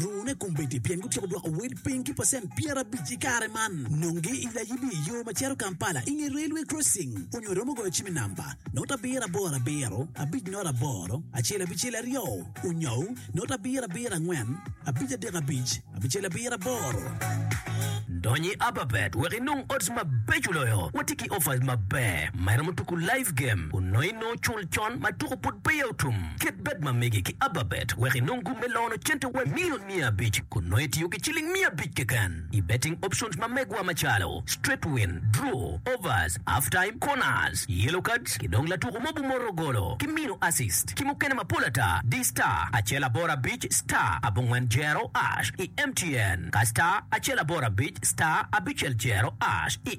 Rune kombeddi pien gutyeko dwoko wel piny ki pacent pyerabic i kare man. Nonge i layibi i yo ma cito Kampala i nge Railway Crossing onyo iromo goyo cim i namba, not abiro aboro abiro, abic not aboro, acel abicel aryo, onyou, not abiro abiro angwen, abic adek abic, abicel abiro aboro. Dony i Ababet wek inong odds mabeco loyo. Watye ki offers maber ma iromo tuku live game onongo inongo cul. Con ma tuko pud peya otum, kit bed ma megi ki ababet wek inong gum me lono cente wa milion miya abic kun nongo itiyo ki ciling miya abic keken i betting options ma megwa macalo, straight win, draw, overs, half time, corners, yellow cards ki dong latuko ma obumoto golo ki mino assist ki mukene mapol ata di star acel aboro abic star abongwen jero ash i mtn ka star acel aboro abic star abicel jero ash i